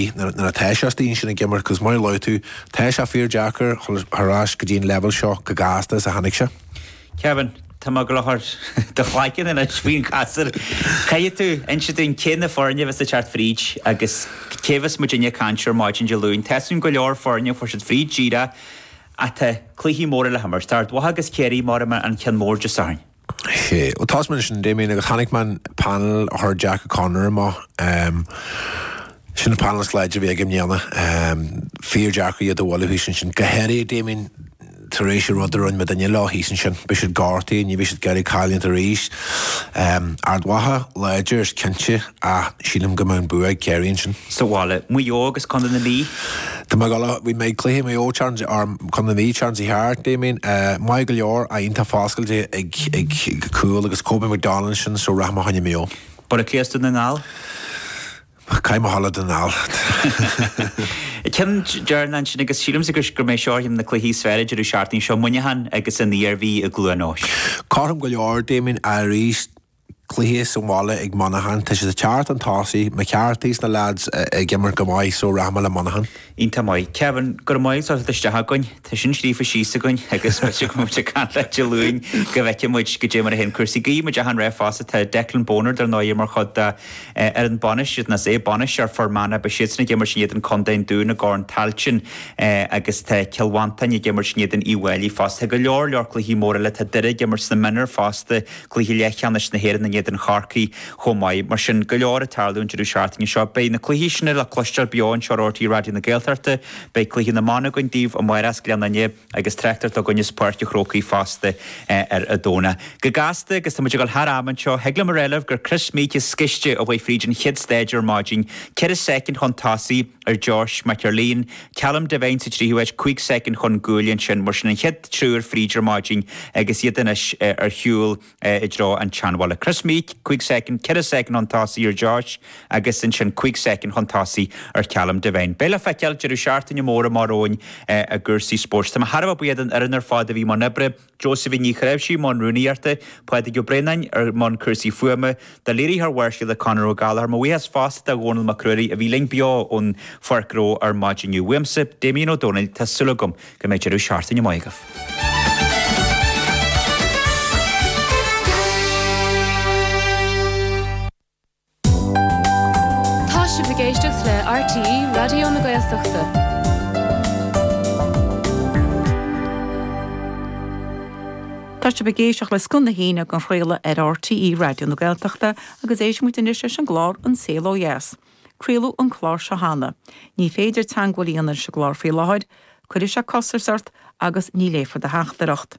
Nuair atá sé astoigh ansin ag imirt, agus mar a luaigh tú, tá sé fíor deacair dhul thar ais go dtí an leibheal seo chomh gasta is a tháinig sé. Kevin, tá mé ag dul a chur do chloigeann anois faoin chasúr. Caithfidh tú inse dúinn cé na foirne a bheas ag teacht fríd agus cé a bheas muidinne ag caint air maidin Dé Luain. Tá soin go leor foirne a fuair siad fríd díreach ach tá cluichí móra le himirt. Tá Ard Mhacha agus Ciarraí mar an ceann mór Dé Sathairn. sé. Tosóidh mé leis sin Damien agus chonaic mé an panel a chuir Jack O'Connor amach. Sin an panel is láidre a bhí aige i mbliana. Fíor deacair iad a bhualadh thíos ansin. Go háirithe Damien tar éis an rud a rinne muidinne leo thíos ansin. Beidh siad gortaithe, ní bheidh siad ag iarraidh cailliúint arís. Ard Mhacha láidir is cinnte. Ach sílim go mbeidh an bua ag Ciarraí ansin. Sa bhaile, Maigh Eo agus Contae na Mí. Tá mé ag dul a bhí mé ag cluiche Maigh Eo chance or Contae na Mí an tseachtain seo thart Damien maith go leor a iontach foscailte ag ag cúl agus Kobe McDonald ansin so rachaidh mé fá choinne Maigh Eo. Baile Átha Cliath is Dún na nGall. Caithfidh mé a dhul le Dún na nGall. Ceann deireanach ansin agus sílimse gurb é seo na cluichí is fearr deireadh seachtaine seo Muineachán agus an Iarmhí i gCluain Eois. Cothrom go leor Damien arís. Cluiche sa bhaile ag Monaghan. Tá siad sa tseart, an tosaí, McCarthy, is na leaids ag imirt go maith so rachaidh mé le Monaghan. Iontach maith. Kevin, go raibh maith agat as teacht isteach chugainn. Tá sin scríofa síos againn agus b'fhéidir go mbeidh muid ag caint leat Dé Luain go bhfeicfidh muid goidé mar a théann cúrsaí. Guímid achan rath fosta. Tá Declan Bonner, dar ndóigh, mar chuid dá fhoireann bainistíochta nó é, bainisteoir Fhear Manach, beidh siadsan ag imirt in éadan Co an Dúin i gCorn Tailteann agus tá Cill Mhantáin ag imirt in éadan Uíbh Fháilí fosta. Tá go leor, leor cluichí móra eile. Tá Doire ag imirt sna Minor fosta. gcluiche leathcheannais na hÉireann in éadan Chorcaí chomh maith. Mar sin, go leor ag tarlú an deireadh seachtaine seo. Beidh na cluichí sin le cloisteáil beo anseo ar RTÉ Raidió na Gaeltachta. Beidh cluiche na mban againn daoibh amárach as Gleann Fhinne agus tráchtaireacht againn as Páirc a' Chrócaigh fosta ar an Domhnach. Go gasta, agus tá muid ag dul thar am anseo, thig liom a rá libh gur Kris Meeke is gaiste a chuaigh fríd an chéad stáid ar maidin, ceithre soicind chun tosaigh. ar Josh McErlean, Callum Devine sa tríú háit, 5 soicind chun cúil ansin. Mar sin an chéad triúr fríd ar maidin agus iad anois ar shiúl i dtreo an tseanbhaile. Kris Meeke, 5 soicind, 4 soicind chun tosaigh ar Josh agus ansin 5 soicind chun tosaigh ar Callum Devine. Beidh le feiceáil. Deireadh seachtaine mór amach romhainn i gcúrsaí spóirt. Tá mé thar a bheith buíoch den fhoireann ar fad a bhí i mbun oibre. Josephine Ní Chnáimhsí i mbun rúnaíochta, Pádraig Ó Braonáin, i mbun cúrsaí fuaime, do léiritheoir Bharrscéalta Conor Ó Gallchóir. Mo bhuíochas fosta do Dhónall Mac Ruairí a bhí linn beo ón Pháirc Reo ar maidin inniu. Uaimse, Damien Ó Dónaill, tá súil agam go mbeidh deireadh seachtaine maith agaibh. Tá sibh ag éisteacht le RTÉ Raidió na Gaeltachta. Tá sibh ag éisteacht le Scoth na hAoine á athchraoladh ar RTÉ Raidió na Gaeltachta agus éistfimid anois leis an gclár An Saol Ó Dheas. Craoladh an clár seo cheana. Ní féidir teagmháil a dhéanamh leis an gclár faoi láthair. Cuirfidh sé costas ort agus ní léifear do theachtaireacht.